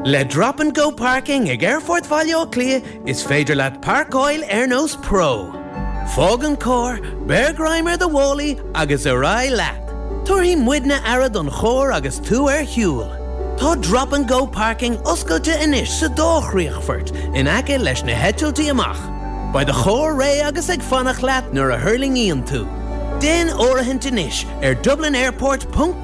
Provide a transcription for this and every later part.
Le Drop and Go Parking ag Aerfort Bhaile Átha Cliath is féidir leat páirceáil ar nós pro. Fág an carr, beir greim ar do mhálaí agus ar aghaidh leat! Tabharfaidh muidne aire don charr agus tú ar shiúl. Tá Drop and Go Parking oscailte anois sa dá chríochfort in aice leis na heitiltí amach. Beidh do charr réidh agus ag fanacht leat nuair a thuirlingíonn tú. Déan áirithint anois ar dublinairport.ie.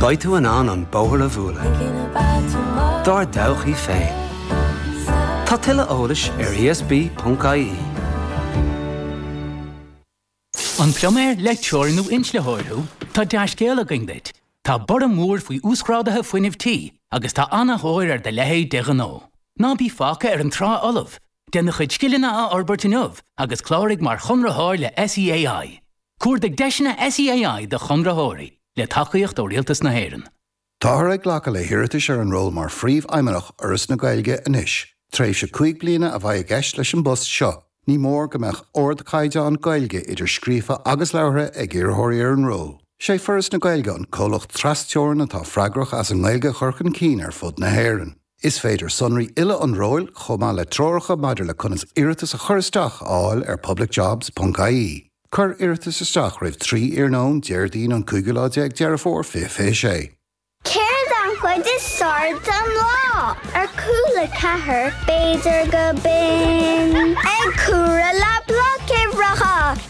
Beidh tú in ann an bóthar a bhualadh dár dtodhchaí féin. Tá tuilleadh eolais ar ESB.ie. An pluiméir, leictreoir nó inslitheoir thú? Tá dea-scéal againn duit! Tá borradh mór faoi uasghráduithe fuinnimh tí agus tá an-thóir ar do leithéid de ghnó. Ná bí fágtha ar an trá fholamh! Déan do chuid scileanna a fhorbairt inniu agus cláraigh mar chonraitheoir le SEAI. Cuardaigh deiseanna SEAI do chonraitheoirí, le tacaíocht ó Rialtas na hÉireann. Táthar ag glacadh le hiarratais ar an ról mar Phríomhfheidhmeannach Fhoras na Gaeilge anois. Tréimhse cúig bliana a bheidh i gceist leis an bpost seo. Ní mór go mbeadh ardchaighdeán Gaeilge, idir scríofa agus labhartha, ag iarrthóirí ar an ról. Is é Foras na Gaeilge an comhlacht trasteorann atá freagrach as an nGaeilge a chur chun cinn ar fud na hÉireann. Is féidir sonraí uile an róil, chomh maith le treoracha maidir le conas iarratas a chur isteach, a fháil ar publicjobs, ponc-IE. Cuir iarratas isteach roimh 3 iarnóin Déardaoin an cúigiú lá déag Deireadh Fómhair 2026. Céard an chuid is fearr den lá? Ar Cúla4, b'fhéidir gurb in ag comhaireamh le Bloic Uimhreacha.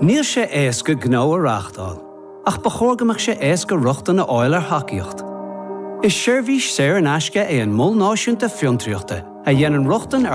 Níl sé éasca gnó a reáchtáil, ach ba chóir go mbeadh sé éasca rochtain a fháil ar thacaíocht. Is seirbhís saor in aisce é an Mol Náisiúnta Fiontraíochta a dhéanann rochtain ar